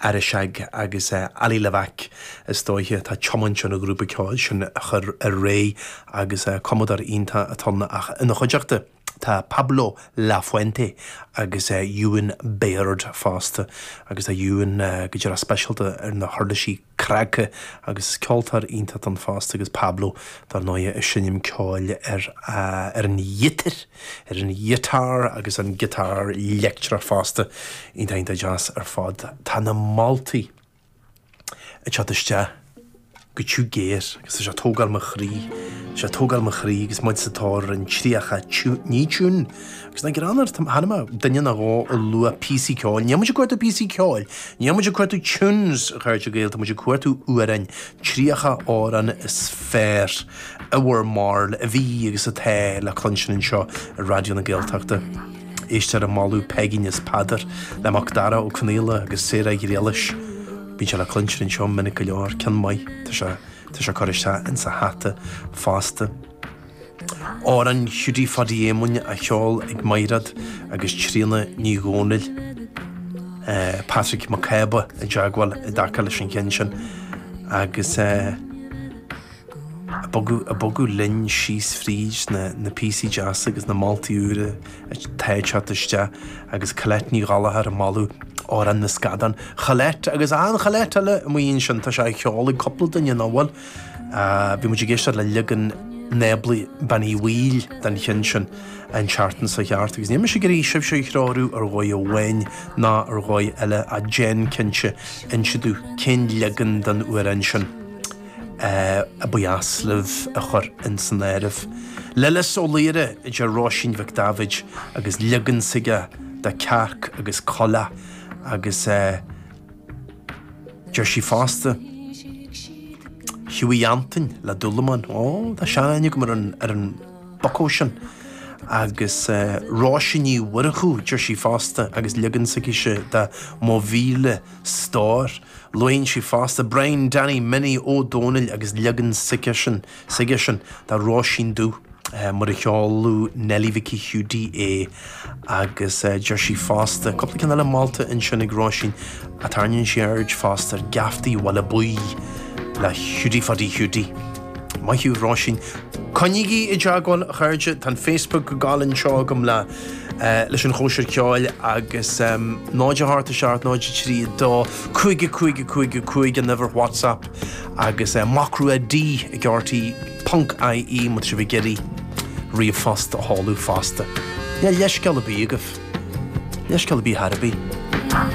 Arisaig agus Ali Levack, is dóiche, atá ag tiomáint an ghrúpa ceoil sin ar aghaidh agus cumadóir iontach atá ann ach ina chuideachta tá Pablo Lafuente agus Ewan Baird fosta agus tá Ewan go díreach speisialta ar na huirlisí cnagtha agus ceoltóir iontach atá ann fosta agus Pablo, dár ndóighe, ag seinm ceoil ar an ghiotár. ar an ghiotár agus an giotár leictreach fosta, iontach deas ar fad. Tá na moltaí ag teacht isteach go tiubh géar agus tá sé ag tógáil mo chroí, tá sé ag tógáil mo chroí agus muid sa tóir ar an 30, ní tiún agus nach greannmhar, chonaic mé duine nó dhó ag lua píosaí ceoil, níl muid ag cuartú píosaí ceoil, níl muid ag cuartú tunes, a chairde Gael, tá muid ag cuartú amhráin 30 amhrán is fearr ever mar a bhí agus atá le cluinstin anseo ar Raidió na Gaeltachta. Éisteoir ag moladh Peigín is Peadar le Mac Dara Ó Conaola agus Sarah Ghriallais. Bíonn sé le cluinstin anseo minic go leor, ceann maith, tá sé curtha isteach insa hata fosta. Amhrán Hiúdaí Phádaí Éamoinn á cheol ag Maighreád agus Tríona Ní Dhomhnaill. Patrick Mac Cába i dteagmháil i dtaca leis an cheann sin agus é ag bogadh linn síos fríd na píosaí deasa agus na moltaí úra atá ag teacht isteach agus Colette Ní Ghallachair ag moladh Amhrán na Scadán. Cholette agus an Cholette eile amuigh ansin, tá sé á cheol ag cúpla duine nó, bhuel, Bhí muid ag éisteacht le leagan Nábla Bean Uí Bhaoill den cheann sin an tseachtain seo chuaigh thart agus níl mise ag iarraidh sibhse a threorú ar dhóigh amháin ná ar dhóigh eile ach déan cinnte inse domh cén leagan den amhrán sin a ba dheas libh a chur ins an áireamh. Lillis Ó Laoire, a deir Róisín Mhic David, agus leagan s'aige de Cearc agus Coileach agus é Deir sí fosta, Hughie Antoin le dúlamán, ó, tá sean-aithne agam ar an, ar an bhucó sin. Agus eh, Róise Ní Mhurchú, deir sí fosta, agus leagan s'aicise de Mo Mhíle Stór. Luaigh sí fosta Brian Danny Minnie Ó Domhnaill agus leagan s'aigesean. S'aigesean de Róisín Dubh, mar a cheoladh Neilí Mhicí Hiúdaí é, agus deir sí fosta, cúpla ceann eile molta ansin ag Róisín, a tairneann sí aird fosta ar Geaftaí Bhaile Buí le Hiúdaí Phádaí Hiúdaí. Maith thú, Róisín. Coinnigí i dteagmháil, a chairde, tá an Facebook ag gabháil anseo agam le leis an chóisir ceoil, agus 0 8 7 0 3 2 5 5 5 5 an uimhir WhatsApp. agus Mac Rua D ag RTÉ ponc IE má tá sibh ag iarraidh ríomhphost a sheoladh fosta, níl leithscéal ar bith agaibh, leithscéal ar bith ar bith.